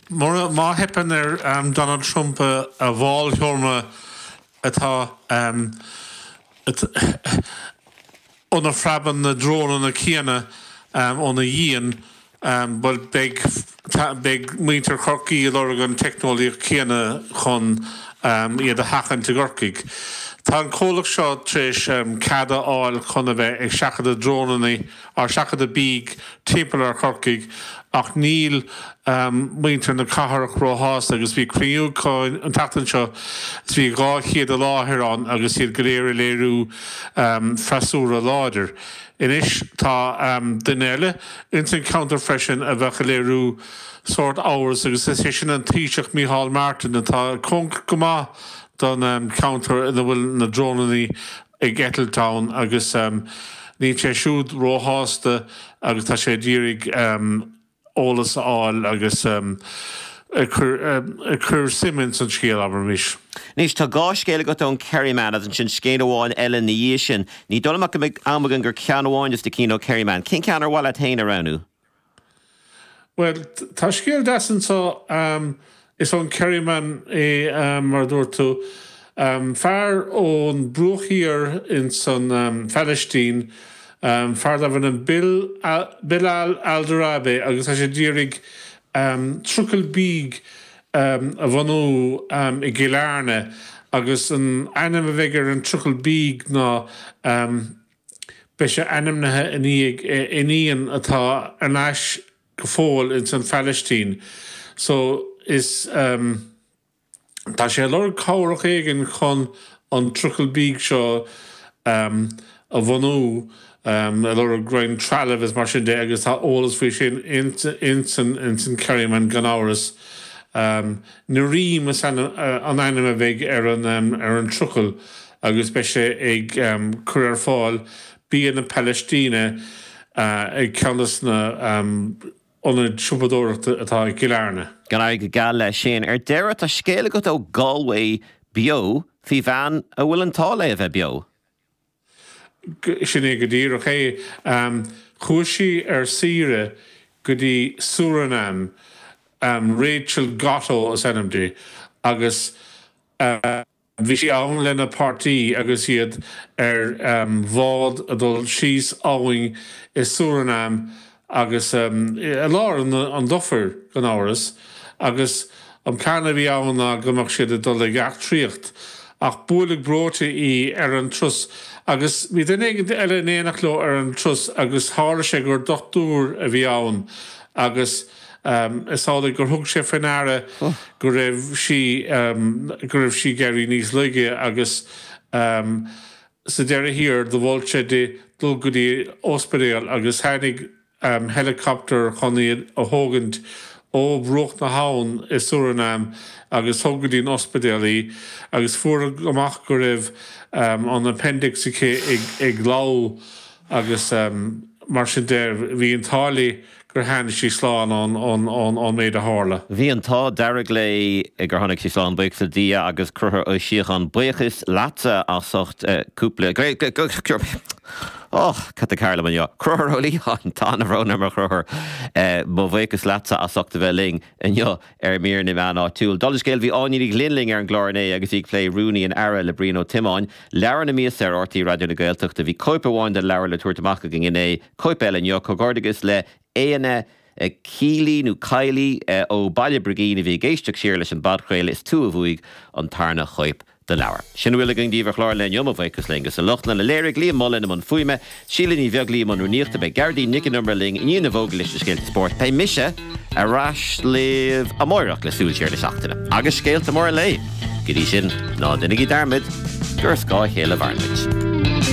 Bhuel má theipeann ar Donald Trump a bhallsheomra atá óna bpreabann na drónanna a dhéanamh óna dhíon, bhuel, beidh muintir Chorcaí ag lorg an teicneolaíocht céanna chun iad a sheachaint i gCorcaigh. Tá an comhlacht seo tar éis cead a fháil chun a bheith ag seachadadh drónannaí. ag seachadadh bídh timpeall ar Chorcaigh ach níl muintir na cathrach róshásta agus bhí cruinniú acu an tseachtain seo is bhí dhá chéad i láthair ann agus iad go léir ag léiriú freasúra láidir. Anois tá duine eile ins an cheantar freisin a bheadh ag léiriú sórt amhras agus is é sin an Taoiseach Micheál Martin atá cóngarach go maith don cheantar ina bhfuil na drónannaí i gCastletown agus níl sé siúd róshásta agus tá sé ag iarraidh eolas a fháil agus ag cur suim ins an scéal, abraimis. Anois, tá dhá scéal agat ón Kerryman agus ansin scéal amháin eile ina dhiaidh sin. Ní dóigh liom go mbeidh am againn ach ceann amháin de do chinn ón Kerryman. Cén ceann ar mhaith leat féin a roghnú? Bhuel, tá scéal deas anseo. Is ón Kerryman é, mar a dúirt tú. Fear ón Bruach Thiar ins an Phalaistín, fear darbh ainm Bill, Bilal Alderabe, agus tá sé ag iarraidh trucail bídh a bhunú i gCill Airne, agus an ainm a bheidh ar an trucail bídh ná. Beidh sé ainmnithe i ndiaidh a iníon atá thar n-ais go fóill ins an Phalaistín so is ehm tá sé ag lorg cabhrach éigin chun an trucail bídh seo ehm a bhunú ehm ag lorg roinnt trealaimh is mar sin de agus tá eolas faoi sin ins an Kerryman gan amhras ehm. Ná Reem is ea an ainm a bheidh ar an trucail agus beidh sé ag cur ar fáil bia na Palaistíne ag ceann de na hionaid siopadóireachta atá i gCill Airne. Go n-éirí geal leis sin. Ar deireadh, tá scéal agat ó Galway Beo faoi bhean a bhfuil an t-ádh léi a bheith beo. Sin é go díreach é. Chuaigh sí ar saoire go dtí Suranam. Rachel Gotto is ainm di agus bhí sí ann lena páirtí agus iad ar bhád ag dul síos abhainn i Suranam Agus i lár na dufaire, gan amhras, agus an plean a bhí ann ná go mbeadh siad ag dul ag eachtraíocht, ach buaileadh breoite í ar an turas agus bhí duine éigin eile in éineacht leo ar an turas agus tharla sé gur dochtúir a bhí ann agus is amhlaidh gur thug sé faoi ndeara go raibh sí, go raibh sí ag éirí níos laige agus. Sa deireadh thiar, do mhol sé di dul go dtí ospidéal agus tháinig helicopter chun í a thógaint ó bhruach na habhann i Suranam agus thug go dtí an ospidéal í agus fuarthas amach go raibh an appendix aici ag lobhadh. agus mar sin de bhí an t-ádh léi gur tháinig sí slán ón méid a tharla. Bhí an t-ádh dearg léi gur tháinig sí slán, buíochas le Dia agus a Chrothúir Uí Shíocháin buíochas leatsa as ucht cúpla Crothúr, gabh mo leithscéal tá brón orm a Chrothúir. Mo bhuíochas leatsa as ucht a bheith linn. Inniu ar Mhír na Meán Áitiúil, Dála Scéil, bhí Áine Ní Ghlinn linn ar an gclár inné agus í ag plé Rúnaí an Aire le Brian Ó Tiomáin. Leabhar na Míosa ar RTÉ Raidió na Gaeltachta Bhí cóip amháin den leabhar le tabhairt amach againn inné, cóip eile inniu. Comhghairdeachas le Éanna Kealy, nó Kiely, ó Bhaile Brigín a bhí ag éisteacht siar leis an bpodchraoladh, is tú a bhuaigh an tarna chóip. den leabhar. Sin a bhfuil againn daoibh ar chlár an lae inniu, mo bhuíochas leo agus le lucht a léirithe, Liam Mullen i mbun fuaime, Síle Ní Bheaglaoí i mbun rúnaíochta, beidh Gearóidín Nic an Iomaire linn i ndiaidh na bhfógraí leis na scéalta spóirt, beidh mise ar ais libh amárach le súil siar na seachtaine agus scéalta móra an lae. Go dtí sin, ná déanaigí dearmad gur ar scáth a chéile a mhaireann muid.